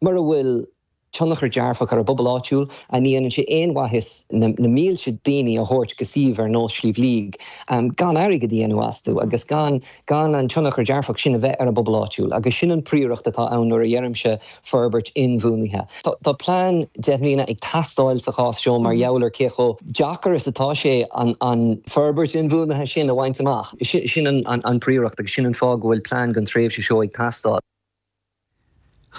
Mura bhfuil tionchar dearfach ar an bpobal áitiúil, an ndéanann sé aon mhaitheas na mílte daoine a thabhairt go suíomh ar nós Sliabh Líag gan airgead a dhéanamh astu agus gan an tionchar dearfach sin a bheith ar an bpobal áitiúil? Agus sin an príoracht atá ann nuair a dheirimse forbairt inbhuanaithe. Tá plean deich mbliana ag teastáil sa chás seo mar gheall ar cé chomh deacair is atá sé an forbairt inbhuanaithe sin a bhaint amach. Sin an príoracht agus sin an fáth go bhfuil plean don tréimhse seo ag teastáil.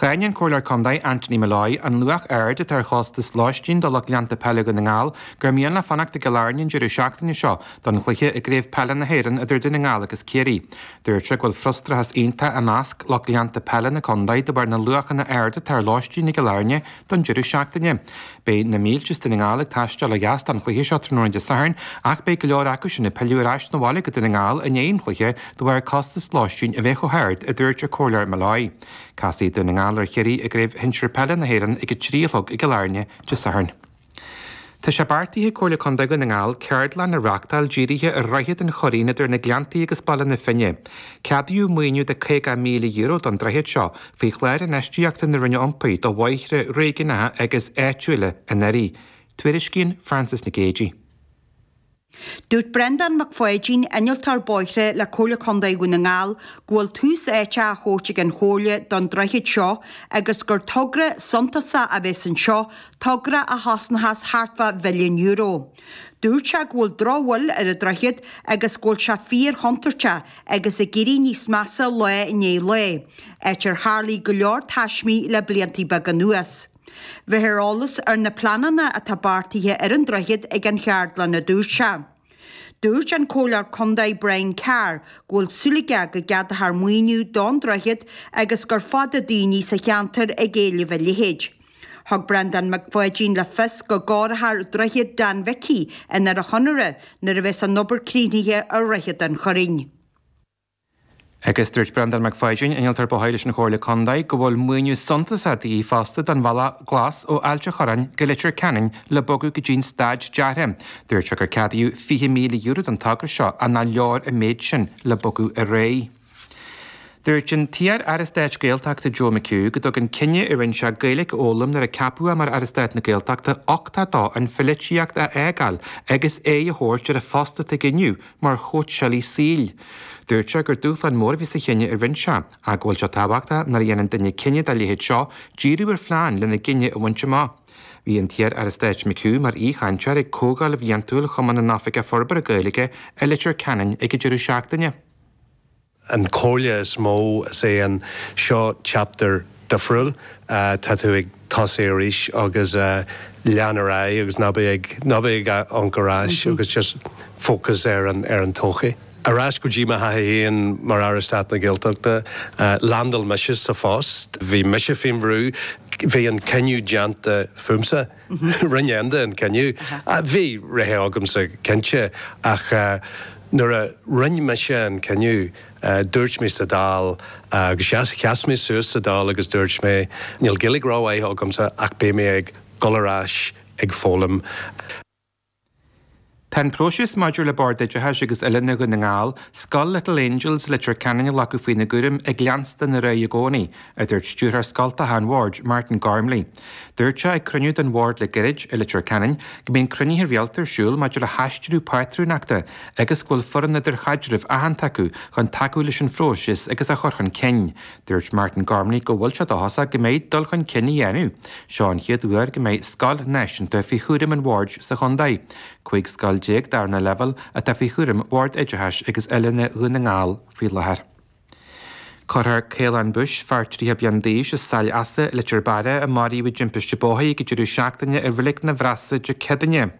Cháin an Comhairleoir Contae Anthony Molloy an luach ard atá ar chostas lóistín do lucht leanta peile Dhún na nGall gur mian leo fanacht i gCill Airne an deireadh seachtaine seo don chluiche i gCraobh Peile na hÉireann idir Dún na nGall agus Ciarraí. Dúirt sé go bhfuil frustrachas iontach i measc lucht leanta peile na contae de bharr na luachanna aird atá ar lóistín i gCill Airne don deireadh seachtaine. Beidh na mílte as Dún na nGall ag taisteal ó dheas don chluiche seo tráthnóna Dé Sathairn ach beidh go leor acu sin ag pilleadh ar ais na bhaile go Dún na nGall i ndiaidh an chluiche de bharr costas lóistín a bheith chomh hard, a dúirt an Comhairleoir Molloy. Casfaidh Dún na nGall ar Chiarraí i gCraobh Shinsir Peile na hÉireann ag a trí a chlog i gCill Airne Dé Sathairn. Tá sé beartaithe ag Comhairle Contae Dhún na nGall ceardlann a reáchtáil dírithe ar dhroichead an Churraoin idir na Gleanntaí agus Baile na Finne. Ceadaíodh maoiniú de €50,000 don droichead seo Faoi Chlár Infheistíochta na Roinne Iompair do Bhóithre Réigiúnacha agus Áitiúla anuraidh, tuairiscíonn Frances Nic Géadaigh. Dúirt Breandán Mac Pháidín, Innealtóir Bóithre le Comhairle Contae Dhún na nGall, go bhfuil tús áite á thabhairt ag an Chomhairle don droichead seo agus gur togra suntasach a bheas anseo, togra a chosnóchas thart fá mhilliún euro. Dúirt sé go bhfuil drochbhail ar an droichead agus go bhfuil sé fíorchontúirteach agus ag éirí níos measa lá i ndiaidh lae, áit ar tharlaigh go leor taismí le blianta beaga anuas. Bhéarfar eolas ar na pleananna atá beartaithe ar an droichead ag an cheardlann, a dúirt sé. Dúirt an Comhairleoir Contae Brian Carr go bhfuil súil aige go gceadófar maoiniú don droichead agus gur fada daoine sa cheantar ag éileamh a leithéid. Thug Breandán Mac Pháidín le fios go gcóireofar Droichead Dan Mhicí i nDoire Chonaire nuair a bheas an obair críochnaithe ar Dhroichead an Churraoin. Agus dúirt Breandán Mac Pháidín, Innealtóir Bóthair leis an Chomhairle Contae, go bhfuil maoiniú suntasach de dhíth fosta don Bhealach Glas ó Ailt an Chorráin go Leitir Ceanainn le bogadh go dtí'n staid deartha. Dúirt sé gur ceadaíodh €20,000 don togra seo, ach nach leor an méid sin le bogadh ar aghaidh. Dúirt an t-iar-aire stáit Gaeltachta Joe McHugh go dtug an cinneadh a rinne sé Gaeilge a fhoghlaim nuair a ceapadh é mar Aire Stáit na Gaeltachta uchtach dó an pholaitíocht a fhágáil agus aghaidh a thabhairt ar an phost atá aige inniu mar chóitseálaí saoil. Dúirt sé gur dúshlán mór a bhí sa chinneadh a rinne sé ach go bhfuil sé tábhachtach nuair a dhéanann duine cinneadh dá leithéid seo díriú ar phlean lena gcinneadh a bhaint amach. Bhí an t-iar-aire stáit McHugh mar aoichainteoir ag comhdháil bhliantúil Chumann na nOifigeach Forbartha Gaeilge i Leitir Ceanainn ag an deireadh seachtaine. an chomhairle is mó is é an, seo chapter difriúil, tá tú ag tosaigh arís agus lean ar aghaidh agus ná bí ag, ná bí ag amharc ar ais agus just focus ar an, ar an todhchaí. Ar ais go dtí mo thaithí féin mar Aire Stáit na Gaeltachta, landáil mise sa phost, bhí mise faoin bhrú, bhí an cinneadh déanta fúmsa. Rinne Enda an cinneadh. Bhí rogha agamsa, cinnte, ach nuair a rinne mise an cinneadh, dúirt mé sa Dáil, agus sheas mé suas sa Dáil agus dúirt mé, níl Gaeilge rómhaith agamsa ach beidh mé ag dul ar ais ag foghlaim. Tá an próiseas maidir le Bord Oideachais agus Oiliúna Dhún na nGall, Scoil Little Angels, Leitir Ceanainn a ghlacadh faoina gcúram ag leanstan ar aghaidh i gcónaí, a dúirt Stiúrthóir Scoltacha an Bhoird, Martin Gormley. Dúirt sé ag cruinniú den Bhord le gairid i Leitir Ceanainn go mbíonn cruinnithe rialta ar siúl maidir le haistriú pátrúnachta agus go bhfuil foireann idirchaidrimh aitheanta acu chun tacú leis an phróiseas agus á chur chun cinn. Dúirt Martin Gormley go bhfuil sé dóchasach go mbeidh dul chun cinn á dhéanamh. Seo an chéad uair go mbeidh scoil náisiúnta faoi chúram an bhoird sa chontae. 15 scoil darna leibhéal atá faoi chúram Bhord Oideachais agus Oiliúna Dhún na nGall faoi láthair. Cuirfear Caolán Bush, fear 30 bliain d'aois as Saill Easa, Leitir Beara, a maraíodh i dtimpiste bóthair ag deireadh seachtaine i Reilig na bhFrasa Dé Céadaoine,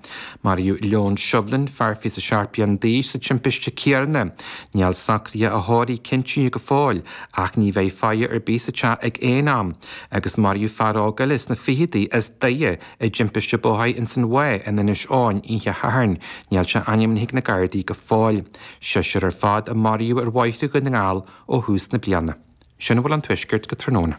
Maraíodh Leon Shovlin, fear fiche is a seacht bliana d'aois, sa timpiste céanna. Níl socruithe a thórraimh cinntithe go fóill, ach ní bheidh faire ar bith sa teach ag aon am. Agus maraíodh fear óg eile sna ficheadaí, as Doire, i dtimpiste bóthair ins an Mhaigh in Inis Eoghain oíche Shathairn. Níl sé ainmnithe ag na Gardaí go fóill. Seisear ar fad a maraíodh ar bhóithre Dhún na nGall ó thús na bliana. Sin a bhfuil ón Tuaisceart go tráthnóna.